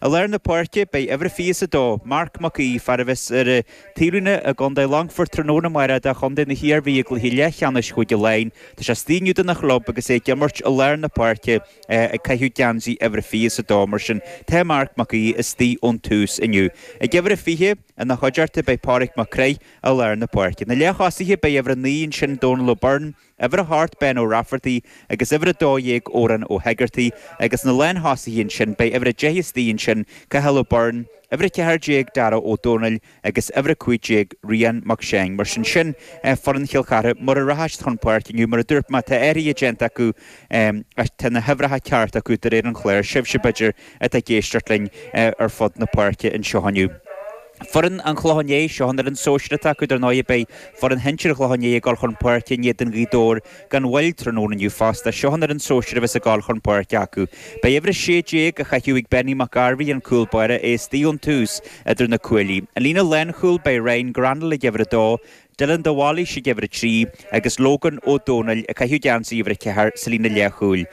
I lár na páirce, beidh uimhir a 22, Marc Mac Aoidh, fear a bheas ar an taobhlíne i gcontae Longfoirt tráthnóna amárach do chontae na hIarmhí i gcluiche leathcheannais Chúige Laighean. Tá sé istigh inniu dona chlub agus é ag imirt i lár na páirce ag caitheamh geansaí uimhir a 22 mar sin tá Marc Mac Aoidh istigh ón tús inniu. Ag uimhir a 20, ina chuideachta, beidh Pádraig Mac Craith i lár na páirce. Na leath-thosaithe, beidh uimhir a 9 ansin Dónal O'Byrne, Uimhir a hocht, Ben Ó Raifeartaigh agus uimhir a dó dhéag, Odhrán Ó hEigeartaigh agus na lánthosaithe ansin beidh uimhir a deich istigh ansin, Cathal Ó Beirn, uimhir a ceathair déag, Darragh Ó Dónaill agus uimhir a cúig déag, Rian Mac Seáin. Mar sin sin é foireann Chill Chartha mar a rachas siad chun páirce inniu. Mar a dúirt mé tá athraithe déanta acu ach tá na huimhreacha cearta acu de réir an chláir. Sibhse b'fhéidir atá ag éisteacht linn ar fud na páirce anseo inniu. Foireann an Chlocháin Léith, seo an fhoireann sóisear atá acu, dar ndóigh beidh foireann shinsir an Chlocháin Léith ag dul chun páirce in éadan Ghaoth Dobhair gan mhoill tráthnóna inniu fosta. Seo an fhoireann sóisir a bheas ag dul chun páirce acu. Beidh uimhir 16 á chaitheamh ag Benny Mac Gairbhí, an cúl báire é istigh ón tús idir na cuaillí. An líne lánchúil, beidh Ryan Greanall ag uimhir 2, Dylan de Bhailís ag uimhir 3 agus Logan Ó Dónaill ag caitheamh geansaí uimhir 4 sa líne leathchúil.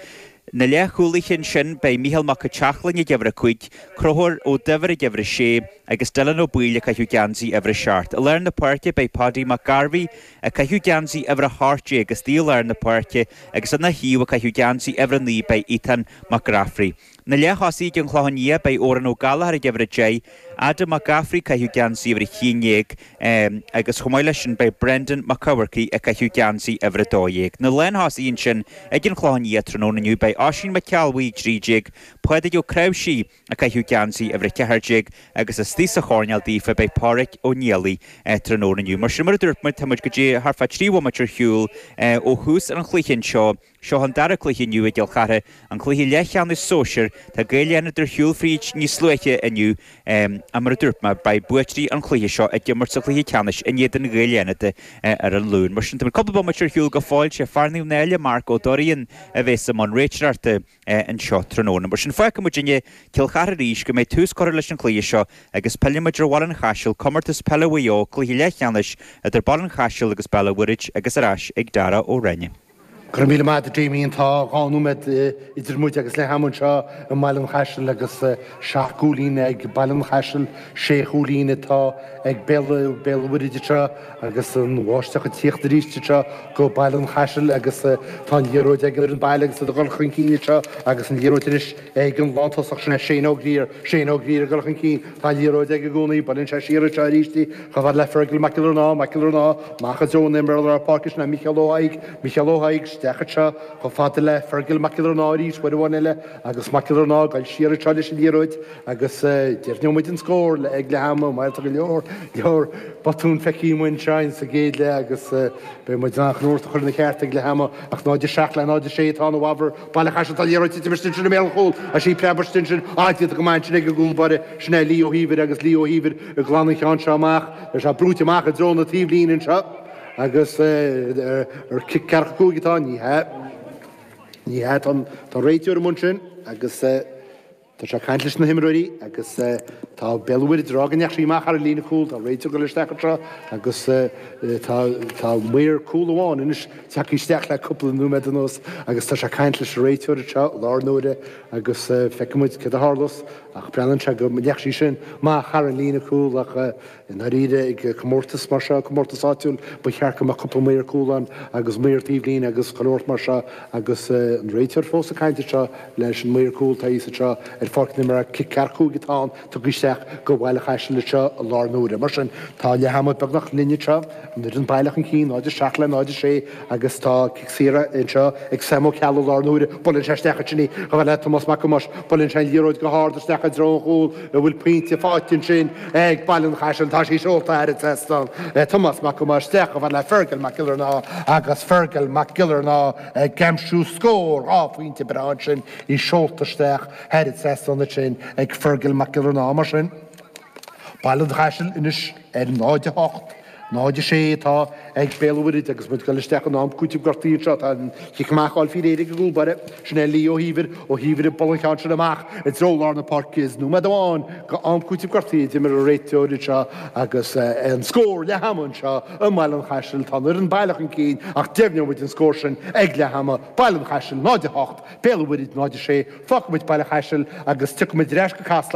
Na leathchúlaithe ansin, beidh Mícheál Mac Eteachlainn ag uimhir a cúig, Conchúr Ó Duibhir ag uimhir a sé agus Dylan Ó Baoill ag caitheamh geansaí uimhir a seacht. I lár na páirce, beidh Paudie Mac Gairbhigh ag caitheamh geansaí uimhir a hocht déag istigh i lár na páirce agus ina thaobh ag caitheamh geansaí uimhir a naoi beidh Ethan Mac Gafraidh. Na leath-thosaithe ag an Chlochán Liath, beidh Odhrán Ó Gallchóir ag uimhir a deich, Adam Mac Gafraidh ag caitheamh geansaí uimhir a haon déag agus chomh maith leis sin beidh Brendan Mac Eachmharcaigh ag caitheamh geansaí uimhir a dó dhéag. Na lánthosaithe ansin ag an Chlochán Liath tráthnóna inniu. Beidh Oisín Mac Ceallbhuí, 13, Pádraig Ó Creabhsí ag caitheamh geansaí uimhir a ceathair déag agus istigh sa choirnéal daofa beidh Páraic Ó Niallaigh tráthnóna inniu. Mar sin mar a dúirt muid tá muid go díreach thart fá trí bhomaite ar shiúl ó thús an chluiche anseo. Seo an dara cluiche inniu i gCill Chartha, an cluiche leathcheannais sóisir. Tá Gaeil Fhánada ar shiúl fríd níos luaithe inniu mar a dúirt mé. Beidh buaiteoirí an chluiche seo ag imirt sa chluiche ceannais in éadan Ghaeil Fhánada ar an Luan. Mar sin tá muid cúpla bomaite ar shiúl go fóill. Sé fear Naomh Náille, Mark Ó Deoráin, a bhéas i mbun réiteoireachta anseo tráthnóna. Mar sin fágfaidh muidinne Cill Chartha arís go mbeidh tús curtha leis an chluiche seo agus pillfidh muid ar Bhaile an Chaisil, Comórtas Peile Mhaigh Eo, cluiche leathcheannais idir Baile an Chaisil agus Béal a' Mhuirthid agus ar ais ag Darragh Ó Ráinne. Go raibh míle maith agat a Damien tá dhá nóiméad idir muid agus leath-am anseo i mBaile an Chaisil agus seacht gcúilín ag Baile an Chaisil, sé chúilín atá ag Béal an Mhuirthid anseo agus an bháisteach ag tíocht arís anseo go Baile an Chaisil agus tá an liathróid ag an baile agus iad ag dul chun cinn anseo agus an liathróid anois. Ag an lántosach sin, Shane Ó Grier, Shane Ó Grier ag dul chun cinn, tá an liathróid aige i gcónaí, baineann sé siar anseo arís í, chomh fada le Fergal Mac Giollarnáth, Mac Giollarnáth amach i dtreo an imreoir lár páirce sin é Micheál Ó Thaidhg, Micheál Ó Thaidhg isteach anseo chomh fada le Fergal Mac Giollarnáth arís uair amháin eile agus Mac Giollarnáth ag dul siar anseo leis an liathróid agus deimhneoidh muid an scór le ag leath ama, mar tá go leor, leor botúin feicfidh muid anseo in sa gcéad leath agus beidh muid in ann an cuntas a chur ina cheart ag leath ama ach 0-7 le 0-6 atá ann i bhfabhar Baile Chaisil tá an liathróid ag titim istigh ansin i mbéal an chúil, tá sí ag preabadh istigh ansin, ach déanta go maith ansin ag an gcúl báire, sin é Lee Ó hÍomhair agus Lee Ó hÍomhair ag glanadh an cheann seo amach, tá sé brúite amach i dtreo na taobhlíne anseo agus cic ceathracha cúig atá ann, ní hea, ní hea, tá an réiteoir amuigh ansin agus. Tá sé ag caint leis na himreoirí agus tá Béal an Mhuirthead ag rá go ndeachaigh sí amach thar an líne cúil. Tá an réiteoir ag dul isteach anseo agus tá maor cúil amháin anois tagtha isteach le cúpla nóiméad anuas agus tá sé ag caint leis an réiteoir anseo i láthair na huaire agus feicfidh muid céard a tharlós ach breathnaíonn sé go ndeachaigh sí sin amach thar an líne cúil ach I ndáiríre, ag comórtas mar seo, comórtas áitiúil, ba cheart go mbeadh cúpla maor cúil ann agus maor taobhlíne agus chuile shórt mar seo agus an réiteoir fós ag caint anseo leis an maor cúil, atá thíos anseo ar Pháirc na Mara, cic ceathracha cúig atá ann tugtha isteach do Bhaile an Chaisil anseo i láthair na huaire. Mar sin, tá leath ama beagnach linn anseo. An fhoireann baile chun cinn 0, 7 le 0, 6 agus tá cic saor anseo ag Sam Ó Ceallaigh i láthair na huaire, buaileann sé isteach ansin í chomh fhad le Tomás Mac Tomáis, buaileann sé an liathróid go hard isteach i dtreo an chúil a bhfuil pointe faighte ansin ag Baile an Chaisil, tá sí seolta thar an seastán ag Tomás Mac Tomáis, isteach chomh fhad le Fergal Mac Giollarnáth agus Fergal Mac Giollarnáth ag aimsiú scór, á, pointe breá ansin, í seolta isteach thar an seastán ansin ag Fergal Mac Giollarnáth mar sin. Baile an Chaisil anois ar 0, 8, 0, 6 atá ag Béal an Mhuirthead agus muid ag dul isteach in am cúitimh gortaithe anseo. Tá an cic amach á fháil faoi réir ag an gcúl báire, sin é Lee Ó hÍomhair, Ó hÍomhair ag bualadh an cheann sin amach i dtreo lár na páirce is nóiméad amháin de am cúitimh gortaithe a d'imir an réiteoir anseo agus an scór leath ama anseo i mBaile an Chaisil. Tá an fhoireann baile chun cinn ach deimhneoidh muid an scór sin ag leath ama. Baile an Chaisil 0, 8, Béal an Mhuirthead 0, 6. Fágfaidh muid Baile an Chaisil agus tiocfaidh muid ar ais go Casla.